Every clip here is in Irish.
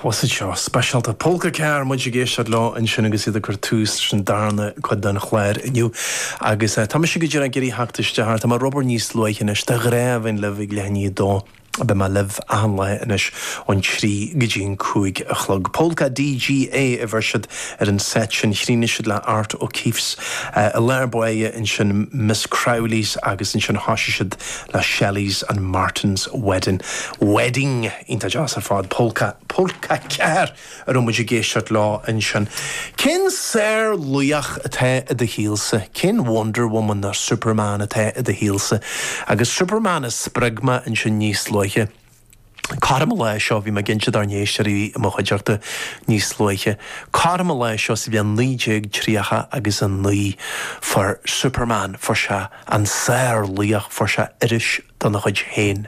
Bhus iad seo, speisialta Pólca 4, muid ag éisteacht leo ansin agus iad ag cur tús leis an darna cuid den chlár inniu agus tá mise go díreach ag iarraidh theacht isteach air, tá mé ar obair níos luaithe anois, de ghnáth a bheinn libh ag leath i ndiaidh 2, beidh mé libh achan lá anois ón trí go dtí an cúig a chlog. Pólca DGA a bheir siad ar an seit sin, chríochnaigh siad le Art O'Keeffe's i lár báire ansin, Miss Crowley's agus ansin thoisigh siad le Shelleys and Martins Wedding, Wedding, iontach deas ar fad, Polca, Polca 4, a raibh muid ag éisteacht leo ansin. Cén sárlaoch atá i do shaolsa? Cén Wonder Woman nó Superman atá i do shaolsa? Agus Superman a spreag mé ansin níos luaithe. Cothrom an lae seo bhí mé ag caint dár n-éisteoirí a bhí i mo chuideachta níos luaithe. Cothrom an lae seo sa bhliain naoi déag tríocha agus a naoi fuair Superman, fuair sé an sárlaoch, fuair sé iris dena chuid féin.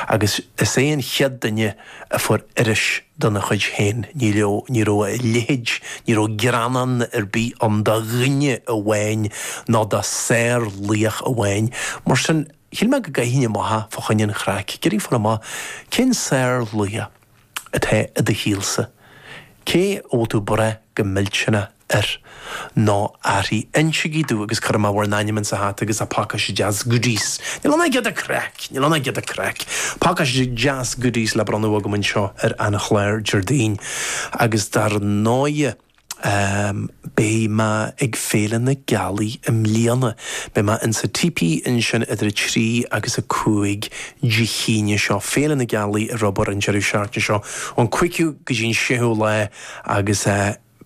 Agus is é an chéad duine a fuair iris dena chuid féin. Ní raibh, ní raibh a leithéid, ní raibh greannán ar bith ann do dhuine amháin ná do sárlaoch amháin. Mar sin. Shíl mé go gcaithfinn amach é fá choinne an chraic. Ag iarraidh fáil amach cén sárlaoch atá i do shaolsa? Cé a bhfuil tú ag brath go millteanach air nó uirthi? Innsigí domh agus cuirfidh mé bhur n-ainm insa hata agus a pacáiste deas goodies. Níl ann ach giota craic! Níl ann ach giota craic. Pacáiste deas goodies le bronnadh agam anseo ar an chlár Déardaoin agus dar ndóighe, Beidh mé ag Féile na Gealaí i mbliana. Beidh mé insa típí ansin idir 3 agus 5 Dé hAoine seo. Féile na Gealaí ar obair an deireadh seachtaine seo ón 5ú go dtí an 6ú lá agus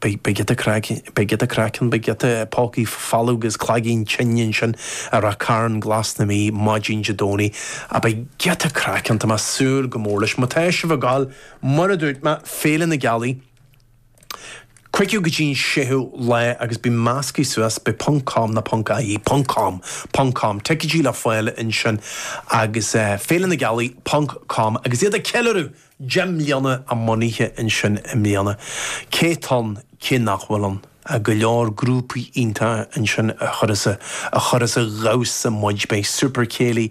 beidh giota craic ann, beidh giota craic ann, beidh giota pócaí folmha agus cloiginn tinne ansin i Ráth Chairn Glas na Mí maidin Dé Domhnaigh. Á beidh giota craic ann, tá mé súil go mór leis. Má tá sibh ag gabháil, mar a dúirt mé, Féile na Gealaí. Cúigiú go dtí'n séú lá agus bím meascaithe suas ab é ponc com nó ponc ie, ponc com, ponc com. Ticéidí le fáil ansin agus Féile na Gealaí, ponc com, agus iad ag ceiliúradh deich mbliana a mbunaithe ansin i mbliana. Cé atá ann, cé nach bhfuil ann ach go leor grúpaí iontacha ansin a chuireas a dhamhsa muid, beidh Super Céilí